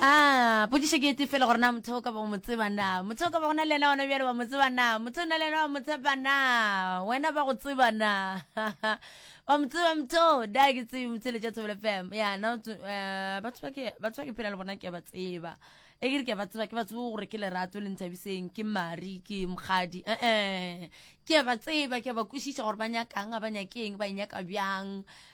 a potšišo ke ete fela gore na motho o ka ba o mo tseba na motho o ka ba go na le yena ona bjale wa mo tseba na motho o na le yena wa mo tshepa na wena ba go tseba na wa mo tseba motho da ke tsebe motshele tša thobele fam ya na eh, batho ba ke batho ba ke phela le bona ke a ba tseba e ke re ke a ba tseba ke ba tsebe gore ke lerato le nthabiseng ke mari ke mokgadi ee ke a ba tseba ke a ba kwešiša gore ba nyakang a ba nyakeng ba e nyaka bjang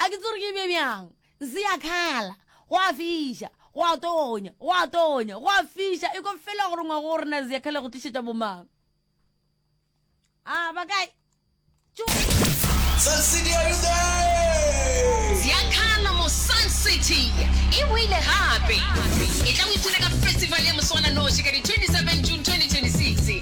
A ke tsore ke be bjang, nse ya khala. Go a fiša. Go a tonya. Go a tonya. Go a fiša. Ekwa fela gore ngwago o rena ya khala go tlišetša bomang. A ba kae? Tšo. Sun City, are you there? Ziakhala mo Sun City e boile gape. E tla o ithute ka festival ya moswananoši ka di 27 June 2026.